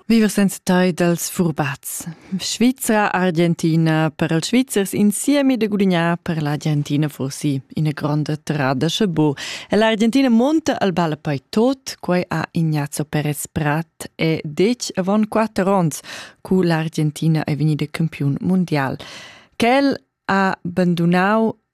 Viver senza tai dals furbats. Svizra Argentina per els Svizzers insieme de gudignar per l'Argentina forsi ina gronda trada sche bo. E l'Argentina monta al balla poi tot, quai ha Ignazio Perez Prat e dec avon quattro ons, cu l'Argentina è venida campion mondial. Quel ha abbandonau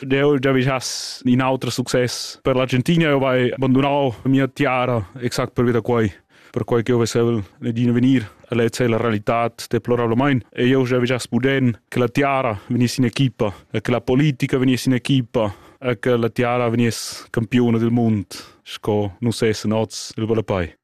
Deu David has in auter success per l'Argentina, eu vai abandonau mia tiara exact pervi da quai per quai che eu vesevel Nadine venir. Ella è la realitat deplorablamain. E io già gias puden che la tiara venissi in equipa, che la politica venissi in equipa, che la tiara veniss campione del mund, sco nus essen oz il Balapai.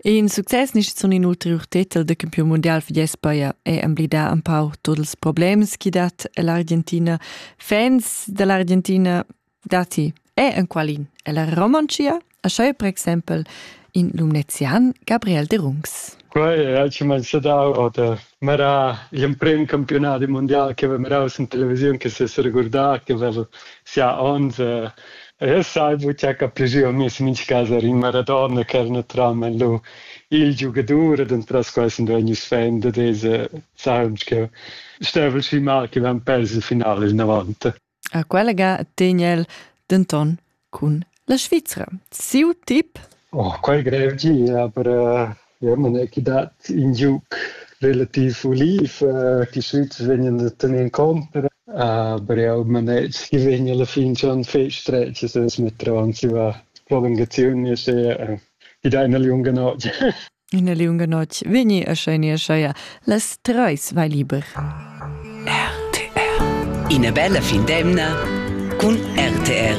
In success nis sun in ulteriur tetel da campiun mundial für Jespayer è emblidà empau tuot ils problems chi dat l'Argentina. Fans da l'Argentina datti è enqualin è la Romoncia, a schau per exempel in Lumnezian Gabriel de Rungs. Quei ha comenzà da oder Mera gl'emprem campiunadi mundial che haveva mirau sin televisiun che se seregurdar che haveva sia onns e e sai buca capir jeu mess in mincha cas er in Maradona che era naturalmein lu il giugadur ed entras quei sun vegnius fan da deze saun ch'eu stev'el schi mal che vevan pers il final inavant. A quella ga tegn el denton cun la Svizra. Siu tip? Oh, quei grev di, aber äh, ja, man è dat in giug relativ uliv. Äh, die Schweiz vegnan da tener contra, aber ja, man è si vegn alla fin schon feststrecke, dass wir dran si va prolungazione sehr. Äh, die deiner jungen Art. Ina liunga notg vegni a schenia scheia las treis vai liber. RTR Ina bella fin d'emna cun RTR.